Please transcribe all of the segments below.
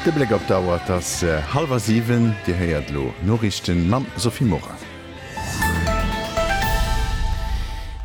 De Bléck op d'Auer, et ass hallwer siwen. Dir héiert elo Noriichten mam Sophie Morang.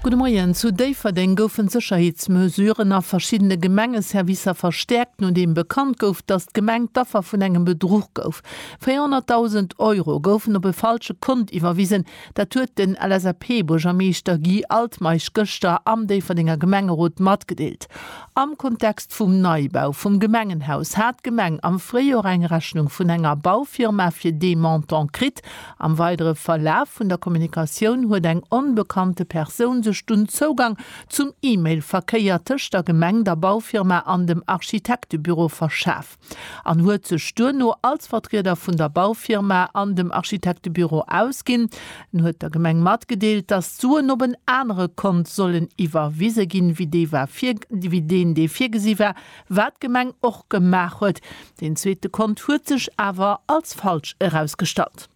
Gudde Moien. Zu Déifferdeng goufen d'Sécherheetsmesuren a verschiddene Gemengeservicer verstäerkt, nodeem bekannt gouf, datt d'Gemeng d'Affer vun engem Bedruch gouf. 400.000 Euro goufen op e falsche Kont iwwerwisen, Dat huet den LSAP-Buergermeeschter Guy Altmeisch gëschter am Déifferdenger Gemengerot matgedeelt. Am Kontext vum Neibau vum Gemengenhaus hat d'Gemeng am Fréijor eng Rechnung vun enger Baufirma fir dee Montant kritt. Am weidere Verlaf vun der Kommunikatioun huet eng onbekannte Persoun sech dunn Zougang zum E-Mail-Verkéier tëscht der Gemeng, der Baufirma an dem Architektebüro verschaf. an huet sech duerno als Vertrieder vun der Baufirma an dem Architektebüro ausginn. En huet der Gemeng matgedeelt, datt d'Suen op en anere Kont sollen iwwerwise ginn, wéi dee war, wéi deen, dee virgesi war, wat d'Gemeng och gemaach huet. Deen zweete Kont huet sech awer als falsch erausgestallt.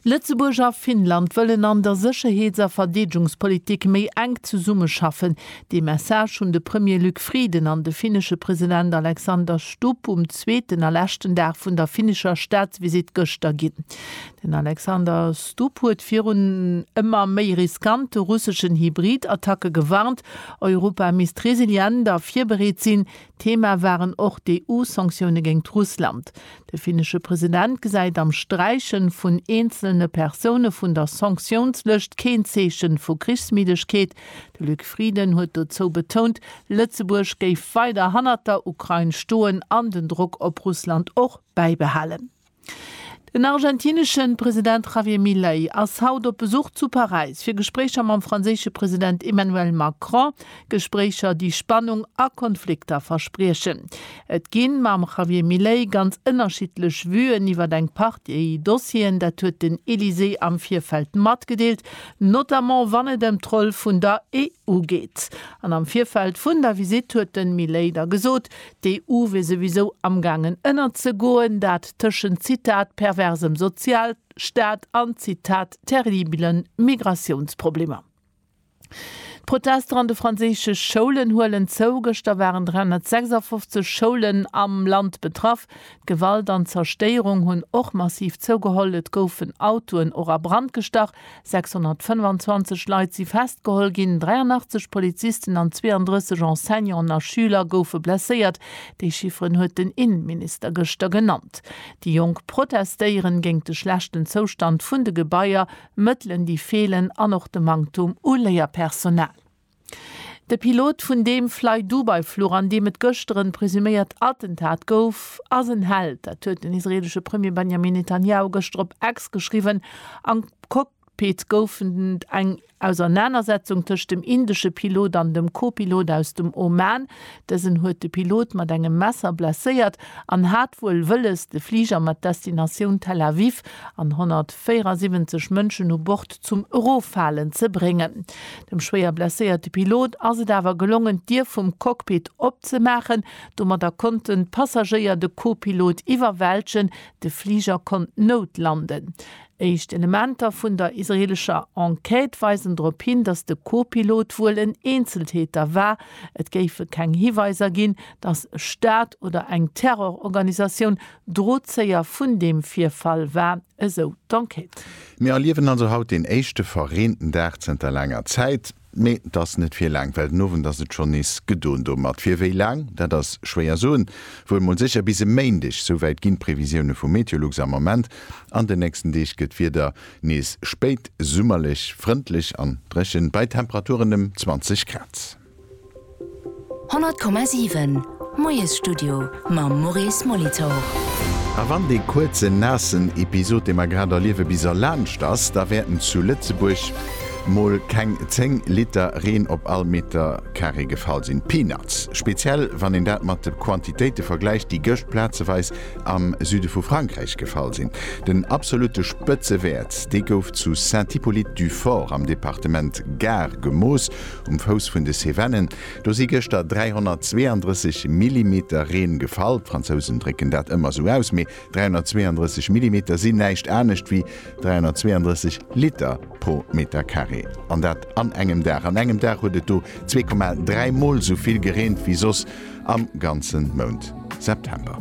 Lëtzebuerg a Finnland wëllen an der Sécherheets a Verdeedegungspolitik méi enk zesummeschaffen. Dee Message hunn de Premier Luc Frieden an de finnesche President Alexander Stubb um zweeten a leschten Dag vun der finnescher Staatsvisitt gëschter ginn. Den Alexander Stubb huet virun ëmmer méi riskante russeschen Hybrid-Attacke gewarnt. Europa misst resilient a virbereet sinn, Thema waren och d'EU-Sanktioune géingt Russland. De finnesche President gesäit am Sträiche vun eenzelne Persoune vun der Sanktiounslëscht keen Zeeche vu Krichsmiddegkeet. De Luc Frieden huet dozou betount, Lëtzebuerg géif weider hannert der Ukrain stoen an den Drock op Russland och bäibehalen. Den argentinesche President Javier Milei ass haut op Besuch zu Paräis fir Gespréicher mam franséische President Emmanuel Macron, Gespréicher déi Spannung a Konflikter verspriechen. Et ginn mam Javier Milei ganz ënnerschiddlech Vuen iwwer eng Partie Dossieren, dat huet den Elysée am Virfeld matgedeelt, notamment wann et ëm d'Roll vun der EU geet. An am Virfeld vun der Visitt huet de Milei da gesot, D'EU wier souwisou amgaangen ënnerzegoen, dat tëschent, Zitat, perversem Sozialstaat an, Zitat, terribele Migratiounsproblemer. D'Protester an de franséische Schoulen huelen zou, Gëschter waren 356 Schoulen am Land betraff. D'Gewalt an d'Zerstéierung hunn och massiv zougeholl, et goufen Autoen och a Brand gestach, 625 Leit si festgeholl ginn, 83 Polizisten an 32 Enseignanten a Schüler goufe blesséiert. Déi Chifferen huet den Innenminister gëschter genannt. Déi Jonk protestéieren géint de schlechten Zoustand vun de Gebaier, Mëttelen déi feelen an och de Manktum u Léierpersonal. De Pilot vun deem Flydubai-Fluch, an deem et gëschter en presuméiert Attentat gouf, ass en Held. Dat huet den israeelesche Premier Benjamin Netanjahu gëschter op X geschriwwen. Am Cockpit gouf et eng Ausernanersetzung tëscht dem indesche Pilot an dem Co-Pilot aus dem Oman. Dësen huet de Pilot mat engem Messer blesséiert an hat wuel wëlles, de Fliger mat Destinatioun Tel Aviv an 174 Mënschen u Bord zum Eroffalen ze bréngen. Dem schwéier blesséierte Pilot ass et awer gelongen, d'Dier vum Cockpit opzemaachen. Domadder konnten d'Passagéier de Co-Pilot iwwerwältegen. De Fliger konnt noutlanden. Éischt Elementer vun der israeelescher Enquête weisen drop hin, datt de Co-Pilot wuel en Eenzeltäter war. Et géife keng Hiweiser ginn, datt e Staat oder eng Terrororganisatioun Drozéier vun deem Virfall war. esou d'Enquête. Mir erliewen also haut deen éischte verreenten Dag zënter laanger Zäit. Mee et ass net fir laang, well den Owend ass et schonn nees gedoen domat. Fir wéi laang, dat ass schwéier soen. Wuel mol sécher bis e Méindeg, souwäit ginn d'Previsioune vu Meteolux am Ament. An den nächsten Deeg gëtt d'Wieder nees spéit summerlech, frëndlech an dréchen, bei Temperaturen ëm 20 Grad. 100,7 Moiesstudio mam Maurice Molitor. A wann dee kuerzen, naassen Episod, dee mer grad erliewe bis a laanscht ass, da wäerten zu Lëtzebuerg mol keng 10 Liter Reen op all Meter Carré gefall sinn. Peanuts. Speziell wann een dat mat de Quantitéite vergläicht, déi gëscht plazeweis am Süde vu Frankräich gefall sinn. Den absolutte Spëtzewäert, dee gouf zu Saint-Hippolyte-du-Fort am Departement Gard gemooss. Alp, um Fouss vun de Cevennen. Do si gëschter 332 Millimeter Reen gefall. D'Fransousen drécken dat ëmmer esou aus, mee 332 Millimeter sinn näischt anescht wéi 332 Liter pro Meter Carré. An dat an engem Dag. An engem Dag huet et do 2,3 Mol esou vill gereent wéi soss am ganze Mount September.